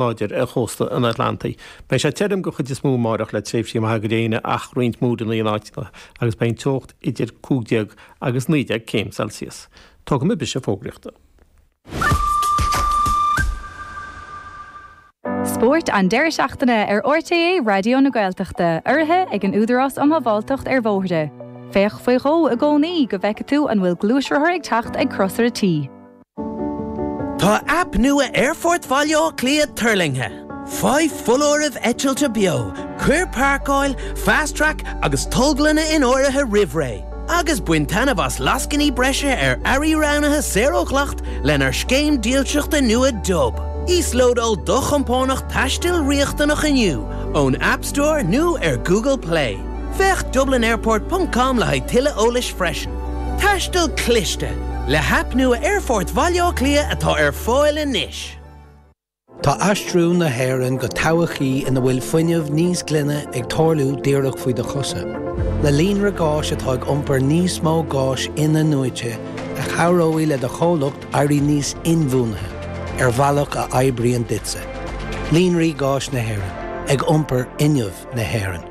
láidir ar chósta an Atlantaigh. Beidh sé tirim den chuid is mó amáireach le tréimhsí maithe gréine ach roinnt múranna in áiteanna agus beidh an teocht idir cúig déag agus naoi déag céim Celsius. Tógfaidh muid briseadh fógraíochta. Spórt an deireadh seachtaine ar RTÉ Raidió na Gaeltachta, urraithe ag an Údarás um Shábháilteacht ar Bhóithre. Féach faoi dhó i gcónaí go bhfeicfidh tú an bhfuil gluaisrothar ag teacht ag Crosaire T. Tá aip nua Aerfort Bhaile Átha Cliath tuirlingthe. Faigh foláirimh eitilte beo, cuir páirceáil, Fast Track agus tolglanna in áirithe roimh ré, agus bain taitneamh as lascainí breise ar earraí roghnaithe saor ó dhleacht lenár scéim dílseachta nua Dub. Íoslódáil do chompánach taistil riachtanach inniu ón App Store nó ar Google Play. Féach dublinairport ponc com le haghaidh tuilleadh eolais freisin. Taisteal cliste, le haip nua Aerfort Bhaile Átha Cliath atá ar fáil anois. Tá aistriú na hÉireann go todhchaí ina bhfuil fuinneamh níos glaine ag tarlú díreach faoi do chosa. Le líonra gáis atá ag iompar níos mó gáis in-athnuaite, a chabhróidh le do chomhlacht éirí níos inbhuanaithe, ar bhealach a oibríonn duitse. Líonraí Gáis na hÉireann, ag iompar fhuinneamh na hÉireann.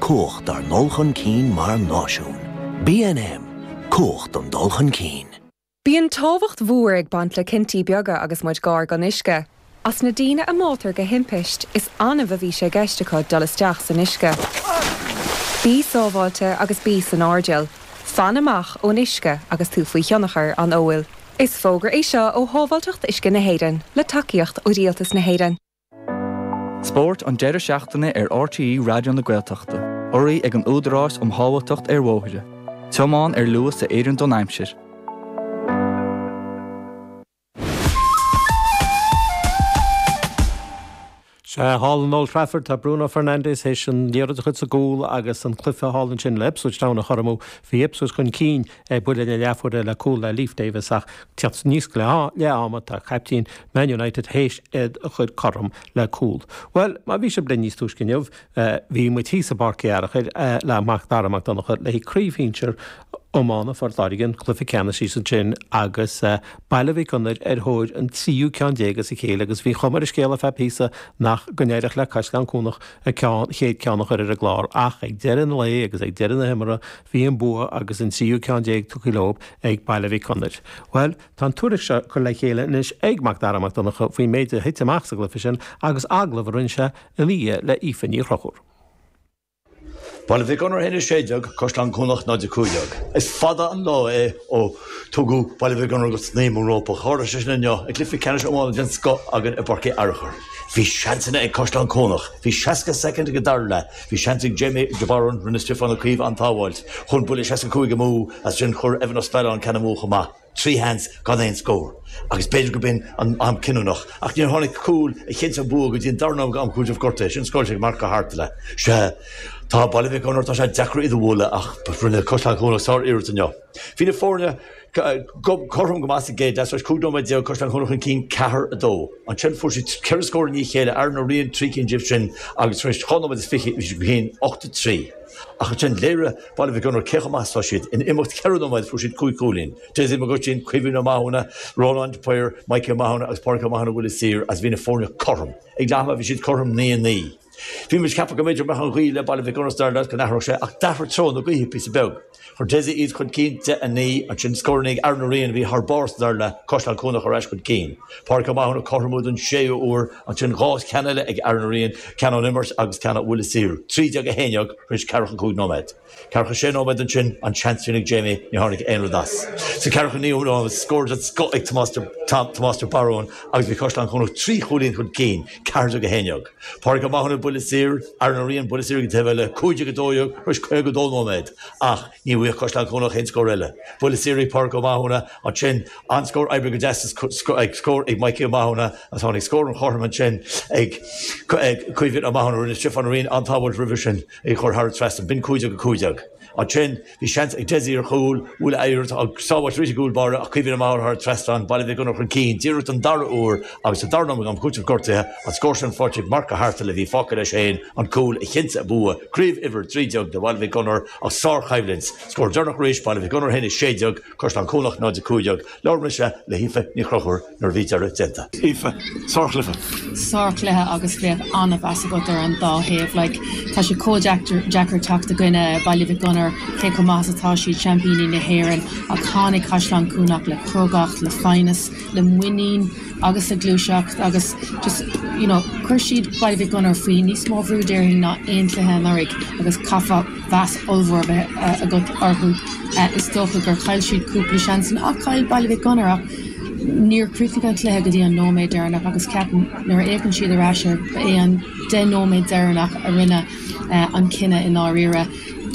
Cumhacht ár ndul chun cinn mar náisiún. BNM, Cumhacht don dul chun cinn. Bíonn tábhacht mhór ag baint le cinntí beaga agus muid gar don uisce. As na daoine a mbáitear de thimpiste, is annamh a bhí sé i gceist acu dul isteach san uisce. Bí sábháilte agus bí san airdeall. Fan amach ón uisce agus tú faoi thionchar an óil. Is fógra é seo ó Shábháilteacht Uisce na hÉireann, le tacaíocht ó Rialtas na hÉireann. Spórt an deireadh seachtaine ar RTÉ Raidió na Gaeltachta. Urraithe ag an Údarás um Shábháilteacht ar Bhóithre. Tiomáin ar luas a oireann don aimsir. Sea, thall in Old Trafford tá Bruno Fernandes théis an liathróid a chur sa gcúl agus an cluiche thall ansin le Ipswich Town a chothromú. Bhí Ipswich chun cinn. ag buille na leathuaire le cúl le Leif Davis ach teacht aníos go leath ama tá caiptín Man United théis é a chur cothrom le cúl. Bhuel, má bhí sibh linn níos túisce inniu, bhí muid thíos i bPáirc Uí Fhearchair le Mac Dara Mac Donncha le haghaidh craobh shinsear iomána Phort Láirge an cluiche ceannais thíos ansin agus Baile Mhic Gonair ar thóir an tríú ceann déag as a chéile agus bhí cuma ar an scéal ar feadh píosa nach go n-éireodh le Caisleán Cuanach an chéad ceann a chur ar an gclár ach ag deireadh an lae agus ag deireadh na himeartha Bhí an bua agus an tríú ceann déag tugtha leo ag Baile Mhic Gonair. Bhuel, tá an tuairisc seo curtha le chéile anois ag Mac Dara Mac Donncha faoin méid a thit amach sa gcluiche sin agus agallamh a rinne sé ina dhiaidh le hAoife Ní Chonchúir. Baile Mhic Gonair 1, 16, Caisleán Cuanach 0, 15. Is fada an lá é ó tugadh Baile Mhic Gonair go snaidhm an rópa. Tharla sé sin inniu ag cluiche ceannais iomána den scoth againn i bPáirc Uí Fhearchair. Bhí seansanna ag Caisleán Cuanach. Bhí 60 soicind ag an dara leath. Bhí seans ag Jamie de Barún, rinne Stiofán Ó Caoimh an-tsábháilt, chuaigh an buille seasca cúig amú, ansin chuir Evan Ó Spealáin ceann amú chomh maith. Trí sheans gan aon scór agus b'fhéidir go b'in an am cinniúnach ach níor tháinig cúl a chinntigh an bua go dtí an dara nóiméad am cúitimh gortaithe sin scóráilte ag Marc Ó hAirtile. Sea, tá Baile Mhic Gonair tá sé deacair iad a bhualadh ach rinne Caisleán Cuanach sáriarracht inniu. Bhí na foirne. cothrom go maith sa gcéad leath, tar éis cúig nóiméad déag, Caisleán Cuanach chun cinn ceathair a dó. Ansin fuair siad ceithre scór i ndiaidh a chéile, Aaron Ó Riain trí cinn díobh sin, agus tar éis dhá nóiméad is fiche bhí siad chun cinn ocht a trí. Ach ansin léirigh Baile Mhic Gonair cé chomh maith is atá siad. In imeacht ceithre nóiméad fuair siad cúig chúilín. Dessie Mac Uistín, Caoimhín Ó Mathúna, Rónán de Paor, Mikey Ó Mathúna agus Pádraig Ó Mathúna ó bhuille saor agus bhí na foirne cothrom. Ag leath ama bhí siad cothrom naoi a naoi. Bhí muid ag ceapadh go mb'fhéidir go mbeadh an ghaoth le Baile Mhic Gonair sa dara leath go n-athródh sé ach d'athraigh treo na gaoithe píosa beag. Chuir Dessie iad chun cinn 10 a 9 ansin, scór ag Aaron Ó Riain a bhí thar barr san Fhearna Caisleán Cuanach ar ais chun cinn. Pádraig Ó Mathúna cothromú don séú uair, ansin dhá cheann eile ag Aaron Ó Riain, ceann ón imirt agus ceann ó bhuille saor, 13 a haon déag tar éis ceathracha cúig nóiméad. Ceathracha sé nóiméad ansin, an seans sin ag Jamie, ní tháinig aon rud as. Sa cheathracha naoú nóiméad, scór den scoth ag Tomás de Barún agus bhí Caisleán Cuanach trí chúilín chun cinn, 14 a haon déag. Pádraig Ó Mathúna, buille saor, Aaron Ó Riain, buille saor ag an taobh eile, 15 a 12, tar éis 52 nóiméad, ach ní bhfuigheadh Caisleán Cuanach aon scór eile. Buille saor ag Pádraig Ó Mathúna, ansin an-scór oibrithe go deas is scór ag Mikey Ó Mathúna, agus tháinig scór an chothroim ansin ag Caoimhín Ó Mathúna, rinne Stiofán Ó Riain an-tsábháilt roimhe sin, é a chur thar an trasnán, b'in 15 a 15. Ansin. Bhí seans ag Dessie ar chúl, bhuail iarracht, an-tsábháilt arís ag an gcúl báire, ach Caoimhín Ó Mathúna thar an trasnán, Baile Mhic Gonair chun cinn díreach don dara huair agus sa dara nóiméad am cúitimh gortaithe an scór sin faighte ag Marc Ó hAirtile a bhí fágtha leis féin an cúl a chinntigh an bua, craobh uimhir 13 do Bhaile Mhic Gonair ach sárchoimhlint, scór deireanach arís Baile Mhic Gonair 1, 16, Caisleán Cuanach 0, 15. Labhair mise le hAoife Ní Chonchúir. nuair a bhí deireadh déanta. Aoife, sárchluiche. Sárchluiche agus bheadh an-mheas agat ar an dá thaobh. Like, tá sé chomh deacair teacht i gcoinne Baile Mhic Gonair, cé chomh maith is atá siad, seaimpíní na hÉireann, ach tháinig Caisleán Cuanach le crógacht, le foighneas, le muinín agus le gluaiseacht agus just, you know, chuir siad Baile Mhic Gonair faoi níos mó brú déarfainn ná aon chluiche anuraidh agus chaithfeá, mheas ollmhór a bheith agat orthu. Is dócha gur chaill siad cúpla seans ann ach chaill Baile Mhic Gonair ach níor chríochnaigh an cluiche go dtí an nóiméad deireanach agus ceapaim nuair a fhéachann siad ar ais air, ba é an deich nóiméad deireanach a rinne an cinneadh i ndáiríre.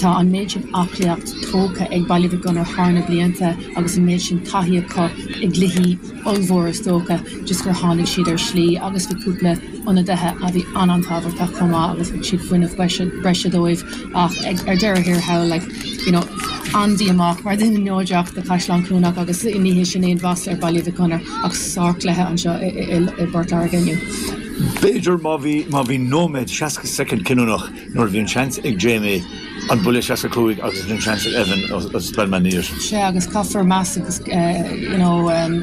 Tá an méid sin aclaíocht tógtha ag Baile Mhic Gonair thar na blianta agus an méid sin taithí acu i gcluichí. ollmhóra is dócha, just gur tháinig siad ar shlí agus bhí cúpla ionadaithe a bhí an-an-thábhachtach chomh maith agus thug siad fuinneamh breise dóibh ach ag ar deireadh thiar thall like you know Andy amach mar dhuine neodrach do Chaisleán Cuanach agus ní hé sin aon mhasla ar Baile Mhic Gonair ach sárchluiche anseo i bPort Láirge inniu. B'fhéidir má bhí nóiméad seasca soicind cinniúnach. nuair a bhí an seans ag Jamie an buille 65 agus bhí an seans ag Evan ó Spelman arís. Sea agus caithfear meas agus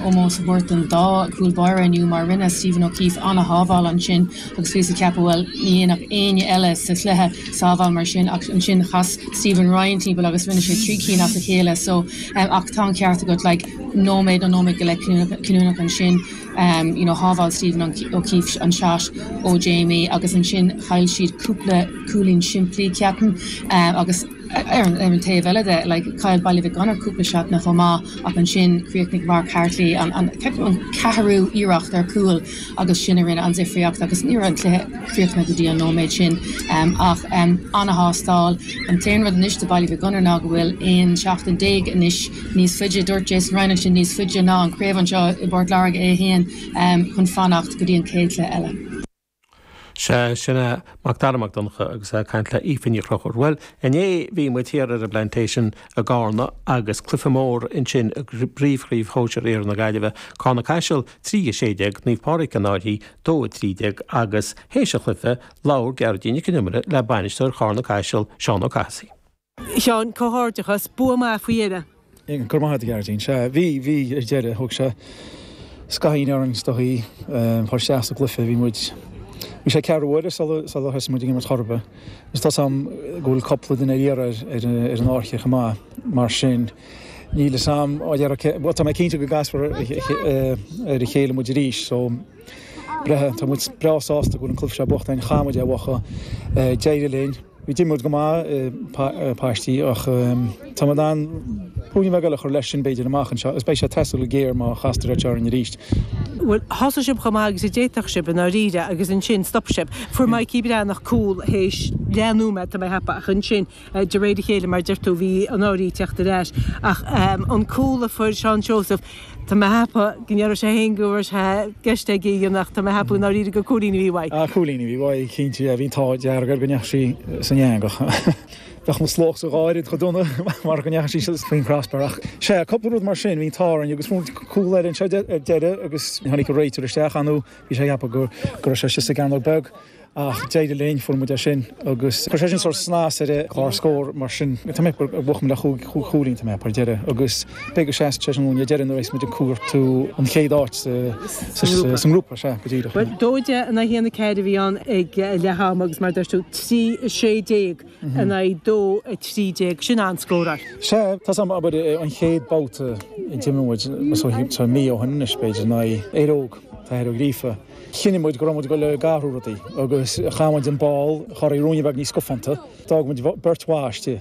ómós a thabhairt don dá chúl báire inniu mar rinne Stephen O'Keefe ana-shábháil ansin agus bhíos ag ceapadh, bhuel, ní dhéanfadh éinne eile sa chluiche sábháil mar sin ach ansin chas Stephen Ryan timpeall agus rinne sé trí cinn as a chéile so ach tá an ceart agat, like, nóiméad nó nóiméad go leith cinniúnach ansin. you know shábháil Stephen O'Keefe an shot ó Jamie agus ansin chaill siad cúpla cúilín simplí ceapaim agus ar an taobh eile de like chaill Baile Mhic Gonair cúpla seatanna chomh maith ach ansin chríochnaigh Mark Hartley an an ceathrú iarracht ar cúl agus sin a rinne an difríocht agus ní raibh an cluiche críochnaithe go dtí an nóiméad sin um, ach um, an-thástáil. An t-aon rud anois do Baile Mhic Gonair ná go bhfuil aon seachtain déag anois níos faide. Dúirt Jason Ryan ansin, Níos faide ná an chraobh anseo i bPort Láirge é fhéin chun fanacht go dtí an chéad chluiche eile. Sea, sin é Mac Dara Mac Donncha agus é ag caint le hAoife Ní Chonchúir. Bhuel, inné bhí muid thiar ar an bPlantation i gCarna agus cluiche mór ansin i bpríomhchraobh shóisir iarthar na Gaillimhe, Carna Caiseal 3, 16, Naomh Pádraig An Fhairche 2, 13, agus théis an chluiche, labhair Gearóidín Nic an Iomaire le bainisteoir Charna Caiseal, Seán Ó Cathasaigh. Sheáin, Comhghairdeachas! Bua maith faoi dheireadh! Ó, Go raibh maith agat a Ghearoidín. Sea, bhí, bhí ar deireadh. Thóg sé scathaín orainn is dóigh a chur isteach sa gcluiche. Bhí muid, bhí sé ceathrú uaire sular, sular thosaigh muid ag imirt ar chor ar bith. Agus tá 's a'm go bhfuil cúpla duine ar iarraidh ar, ar, ar an Fhairche chomh maith. Mar sin, níl 'fhios a'm, á, dhera, cé, bhuel, tá mé cinnte go gcasfar ar a chéile muid arís. So. Breathnaigh, Tá muid breá sásta go bhfuil an cluiche seo buachta againn, chaith muid é a bhuachan, d'éirigh linn, d'imir muid go maith i bpaistí ach tá muid in ann ruainne beag eile a chur leis sin b'fhéidir amach anseo agus beidh sé ag teastáil go géar má chastar iad seo orainn arís. Bhuel, thosaigh sibh chomh maith agus a d'fhéadfadh sibh i ndáiríre agus ansin stop sibh. Fuair Mikey Breathnach cúl théis leath nóiméad, tá mé ag ceapadh, ach ansin. de réir a chéile, mar a deir tú, bhí Annaraoi ag teacht ar ais. Ach an cúl a fuair Seán Seosamh, tá mé ag ceapadh go ndéarfadh sé féin go raibh sé i gceist aige a dhéanamh ach tá mé ag ceapadh i ndáiríre gur cúilín a bhí uaidh. Ach cúilín a bhí uaidh, cinnte, bhí an t-ádh dearg air go ndeachaigh sí san eangach. Bheadh na slaitíní dhá oiread chomh dona mura ndeachaigh sí faoin gcrosbar. Ach sea, cúpla rud mar sin, bhí an t-ádh orainn agus fuair muid cúl eile anseo ar deireadh agus tháinig réiteoir isteach, ansin, bhí sé ag ceapadh go raibh sé istigh sa gcearnóg beag. Ach d'éirigh linn, fuair muid é sin agus chuir sé sin sórt snas ar an gclár scór mar sin tá muid ag buachan le sé chúilín, tá muid ag fáil deireadh agus b'fhéidir go seasfaidh sé sin ag an deireadh nuair a bheas muid ag cuartú an chéad áit sa ngrúpa, sea, go díreach. Bhuel, 2-1, 1-4 a bhí ann ag leath ama agus mar a dúirt tú, 3-16 in aghaidh 2-13, sin an scór a. Sea, tá 's a'm, abair an chéad babhta a d'imir muid, tá mí ó shin anois b'fhéidir, in aghaidh Éire Óg, tá Éire Óg líofa. Chinn muid go raibh muid ag dul ag athrú rudaí agus chaith muid an ball a chorraí ruainne beag níos scafánta. D'fhág muid beirt bhan istigh.